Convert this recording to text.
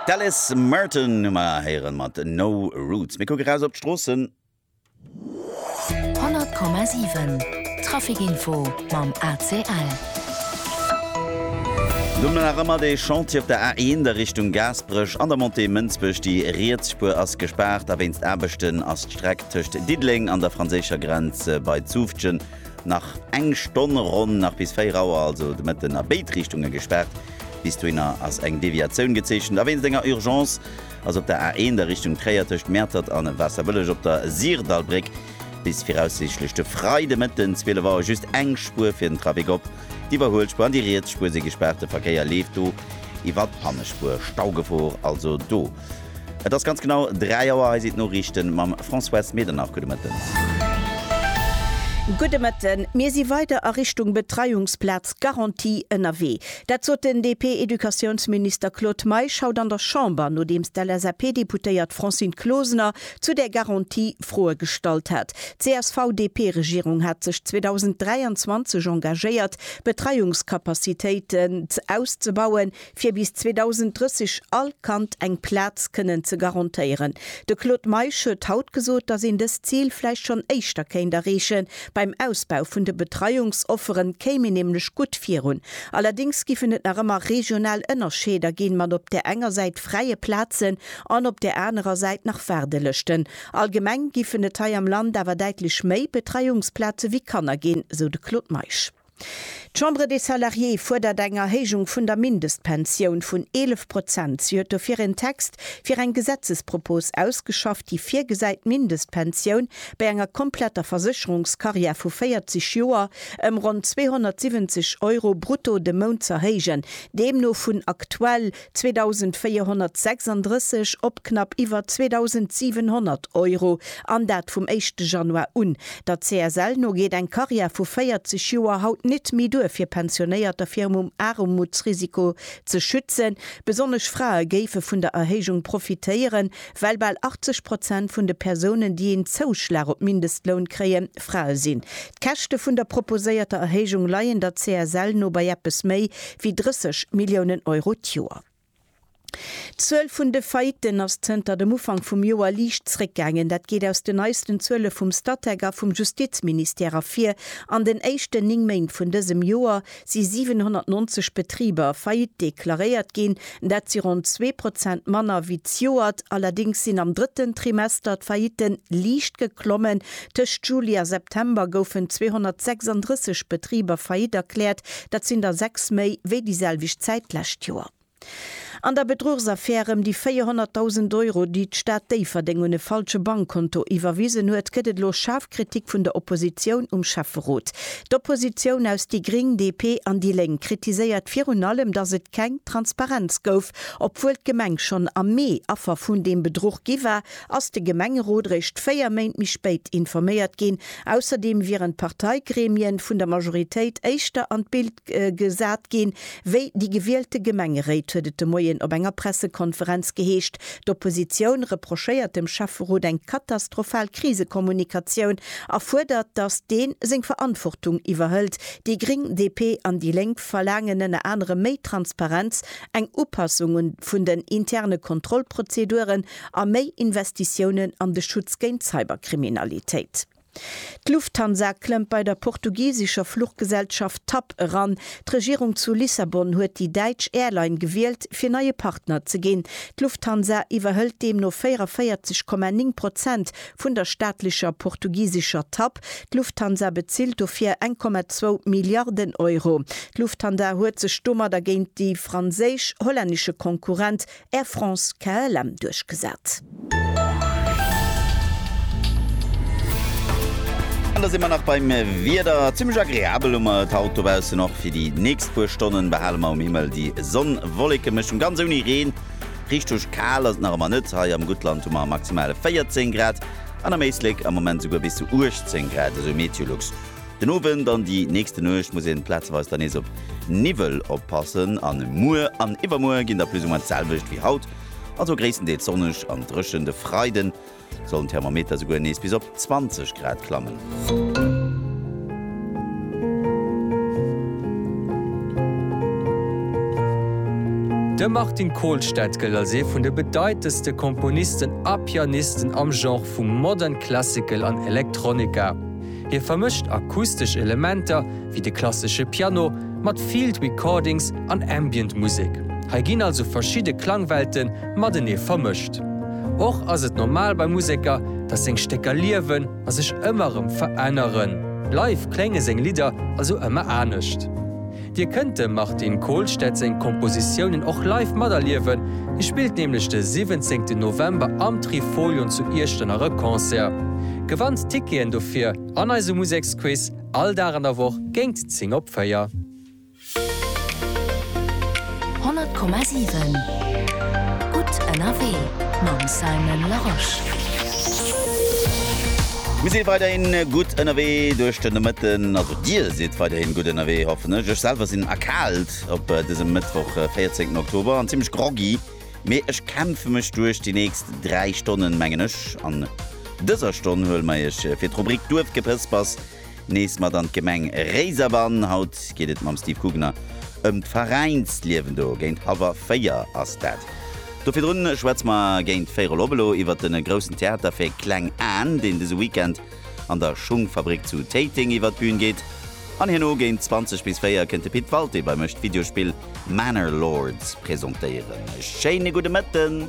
D'Alice Merton hu mer héieren mat No Roots. Mir kucke raus op d'Stroossen. 100,7 Trafic Info mam ACL. Do hunn mer nach ëmmer dee Chantier op der A1 a Richtung Gaasperech an der Montée Mënsbech. Déi riets Spuer ass gespaart a wéinst Aarbechten ass d'Streck tëscht Diddeleng an der franséischer Grenz bei Zutphen Nach eng Stonn ronn, nach bis 4 Auer also de Mëtten a béid Richtunge gespaart. Bis dohinner ass eng Deviatioun gezeechent a wéinst enger Urgence ass op der A1 a Richtung Tréier tëscht Mäertert a Waasserbëlleg op der Syrdallbréck bis viraussiichtlech de Freidemëtten 12 Auer just eng Spuer fir den Trafic op. D'Iwwerhuelspuer an déi riets Spuer si gespaart, de Verkéier leeft do iwwer d'Hannespuer. Staugefor also do. Et ass ganz genau 3 Auer. Hei sinn d'Noriichten mam Françoise Medernach. Gudde Mëtten. Gudde Mëtten. Mir si weider a Richtung Betreiungsplaz Garantie ënnerwee. Dat sot den DP-Educatiounsminister Claude Meisch haut an der Chamber, nodeems d'LSAP-Deputéiert Francine Closener zu där Garantie Froe gestallt hat. D'CSV-DP-Regierung hat sech 2023 engagéiert, d'Betreiungscapacitéiten auszebauen, fir bis 2030 all Kand eng Plaz kënnen ze garantéieren. De Claude Meisch huet haut gesot, datt een dëst Zil vläicht schonn éischter kéint erreechen. Beim Ausbau vun de Betreiungsoffere kéim een nämlech gutt virun. Allerdéngs giffen et nach ëmmer regional Ënnerscheeder ginn, mat op där enger Säit fräie Plazen an op där anerer Säit nach Waardelëschten. Allgemeng giffen et hei am Land awer däitlech méi Betreiungsplaze wéi Kanner ginn, sou de Claude Meisch. D'Chambre des Salariés fuerdert eng Erhéijung vun der Mindestpensioun vun 11 Prozent. Si huet dofir en Text fir eng Gesetzespropos ausgeschafft, déi virgesäit, d'Mindestpensioun bei enger kompletter Versécherungskarriär vu 40 Joer ëm ronn 270 Euro brutto de Mount z'erhéijen, deemno vun aktuell 2.436 op knapp iwwer 2.700 Euro, an dat vum éischte Januar un. Der CSL no geet eng Karriär vu 40 Joer haut nit méi duer fir Pensionéierter virum um Aarmutsrisiko ze schützen. Besonnesch Frae géife vun der Erhéijung profitéieren, Well bal 80 Prozent vun de Persounen, déi een Zouschlag op Mindestloun kréien, Frae sinn. D'Käschte vun der proposéierter Erhéijung leien der CSL no bei eppes méi wéi 30 Milliounen Euro d'Joer. D'Zuel vun de Faillitten ass zënter dem Ufank vum Joer liicht zréckgaangen. Dat geet aus den neisten Zuele vum Statec a vum Justizministère ervir. An den éischten 9 Méint vun dësem Joer si 790 Betriber faillite deklaréiert ginn, dat si ronn zwee Prozent manner wéi d'Joert. Allerdéngs sinn am drëtten Trimester d'Faillite liicht geklommen, tëscht Juli a September goufen 236 Betriber faillite erkläert, dat sinn der sechs méi wéi déi selwecht Zäit d'lescht Joer. An der Bedruchsaffär ëm déi 400.000 Euro, déi d'Stad Déifferdeng un e falsche Bankkonto iwwerwisen huet, gëtt et elo schaarf Kritik vun der Oppositioun um Schäfferot. D'Oppositioun aus déi Gring, DP an déi Lénk kritiséiert virun allem, datt et keng Transparenz gouf. Obwuel d'Gemeng schonn am Mee Affer vun deem Bedruch gi war, ass de Gemengerot eréischt véier Méint méi spéit informéiert ginn. Ausserdeem wieren d'Parteigremien vun der Majoritéit éischter an d'Bild gesat ginn, Wéi déi gewielte Gemengeréit, huet et de Moien op enger Pressekonferenz geheescht. D'Oppositioun reprochéiert dem Schäfferot eng katastrophal Krisekommunikatioun a fuerdert, datt dee seng Verantwortung iwwerhëlt. Déi Gréng, DP an déi Lénk verlaangen ënner anerem méi Transparenz, eng Upassung un vun den interne Kontrollprozeduren a méi Investitiounen an de Schutz géint Cyberkriminalitéit. D'Lufthansa klëmmt bei der portugisescher Fluchgesellschaft TAP eran. D'Regierung zu Lissabon huet déi däitsch Airline gewielt, fir neie Partner ze ginn. D'Lufthansa iwwerhëlt deemno 44,9 Prozent vun der staatlecher portugisescher TAP. D'Lufthansa bezilt dofir eng Komma zwou Milliarden Euro. D'Lufthansa huet sech domadder géint de franséisch-hollännesche Konkurrent Air France KLM duerchgesat. An da si mer nach beim Wieder. Zimmlech agreabel hu mer et haut dobaussen. Och fir déi nächst puer Stonnen behale mer um Himmel déi Sonn-Wolleke-Mëschung. Ganz ouni Reen. Richteg kal ass et nach ëmmer net. Hei am Guttland hu mer maximale 14 Grad an am Éislek am Moment souguer bis zu 18 Grad, esou Meteolux. Den Owend an déi nächste Nuecht muss een plazeweis dann nees op Niwwel oppassen an muer an iwwermuer ginn da plus ou moins d'selwecht wéi haut, also gréisstendeels sonneg an drëchen. De Freiden sollen d'Thermometer souguer nees bis op 20 Grad klammen. De Martin Kolstad gëllt als ee vun de bedeitendste Komponisten a Pianisten am Genre vu Modern Classical an Electronica. Hie vermëscht akustesch Elementer, wéi de klassesche Piano, mat Field Recordings an Ambient Musek. Hei ginn also verschidde Klangwelte matenee vermëscht. Och ass et normal bei Museker, datt seng Stécker liewen a sech ëmmer erëm veränneren. Live klénge seng Lidder also ëmmer anescht. Dir kënnt dem Martin Kohlstedt seng Kompositiounen och live materliewen, hie spillt nämlech de 17 November am Trifolion zu Iechternach e Concert. Gewannt d'Ticketen dofir an eise Museksquiz all Dag an der Woch géingt 10 op 4. 100,7 gutt ënnerwee mam Simon Larosche. Mir si weiderhin gutt ënnerwee duerch de Nomëtten. Dir sidd weiderhin gutt ënnerwee, hoffen ech. Ech selwer sinn erkaalt op dësem Mëttwoch, 14 Oktober, an zimlech groggy, mee ech kämpfe mech duerch déi nächst 3 Stonnen, mengen ech. An dëser Stonn huele mer Iech fir d'Rubrik Duerfgepëspers nees mat an d'Gemeng Réiserbann. Haut geet et mam Steve Kugener ëm d'Veräinsliewen do. Géint hawwer 4 ass dat. Do virdrun schwätze mer géint véierel op elo iwwert de groussen Theater fir kleng Aen, deen dëse Weekend an der Schungfabrik zu Téiteng iwwer d'Bühn geet an herno géint 20 bis 4 kënnt de Pit Walté beim Esch d'Videospill Manor Lords presentéieren. E schéine gudde Mëtten!